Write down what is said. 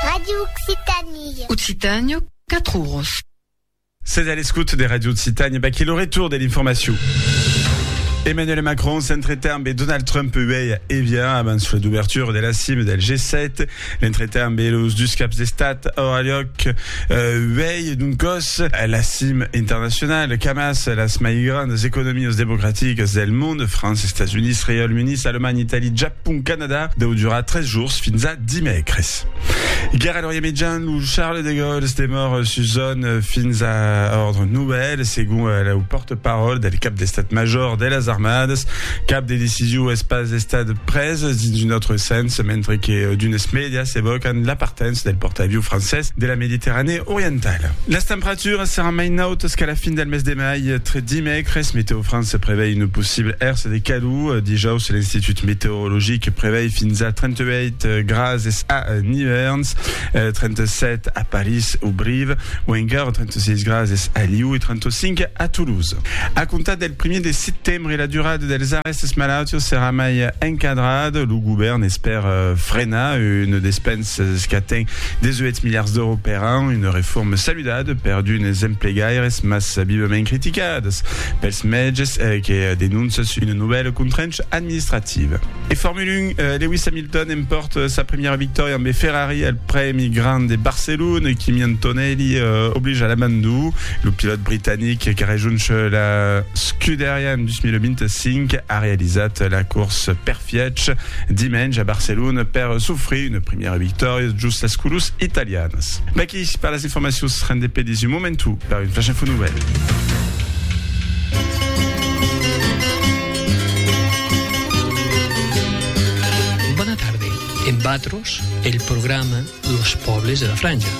Radio Occitanie. Occitània, 4 oros. Sètz a l'escot de Radio Occitània, vaquí lo retour de l'informacion. Emmanuel Macron s'entretà amb Donald Trump uèi a Evian abans la d'ouvertura de la cima del G7. L'entretà amb los dus caps d'estat aurà lloc euh, uèi d'un còs a la cima internacionala qu'amas las mai grandas economias democraticas del mond, França, Estats Units, Reialme Unit, Alemanha, Italia, Japon, Pont Canada deu durar tres jours fins a dimècres. Guèra Lorient Mitjan, lo Charles de Gaulle demòr sus zòn fins a òrdre novèl, segon lo pòrte-paròl del cap d'Estat Major de las Armadas. Cap de decision es pas estat pres dins un autre sens, mentre que d'unes mèdias evòcan la partença del pòrta-avion francés de la Mediterranèa Orientala. Las temperaturas seràn mai nautas qu'a la fin del mes de mai. Tre dimècres, Météo France prevei una possible hersa de calor. Dijaus, l'Institut Meteorologic prevei fins a 38 grases a Nivèrns, 37 a París o Brive, o encara 36 grases a Liu e 35 a Toulouse. A comptar del primièr de setembre, la durada dels arrèstes malautius serà mai encadrada. Lo govèrn espèra frenar una despensa qu'aten 18 miliards d'èuros per an, una reforma saludada per d'unes emplegaires mas vivament criticadas. Pels mètges que denoncen sus una novèla contraincha administrativa. E Formula 1, Lewis Hamilton empòrta sa primièra victòria ambe Ferrari al Prèmi Grand de Barcelona, Kimi Antonelli oblija a l'abandon lo pilòt britanic que rejoncha la Scuderia en 2025 a realizat la corsa perfièch dimenge a Barcelona per s'ofrir una primièra victòria jos las colors italianas. Merci per las informacions, rendé per dins un momentu per un Flash Info Nouvelle. Bona tarde, en Vatros, el programa Los Pòbles de la Franja.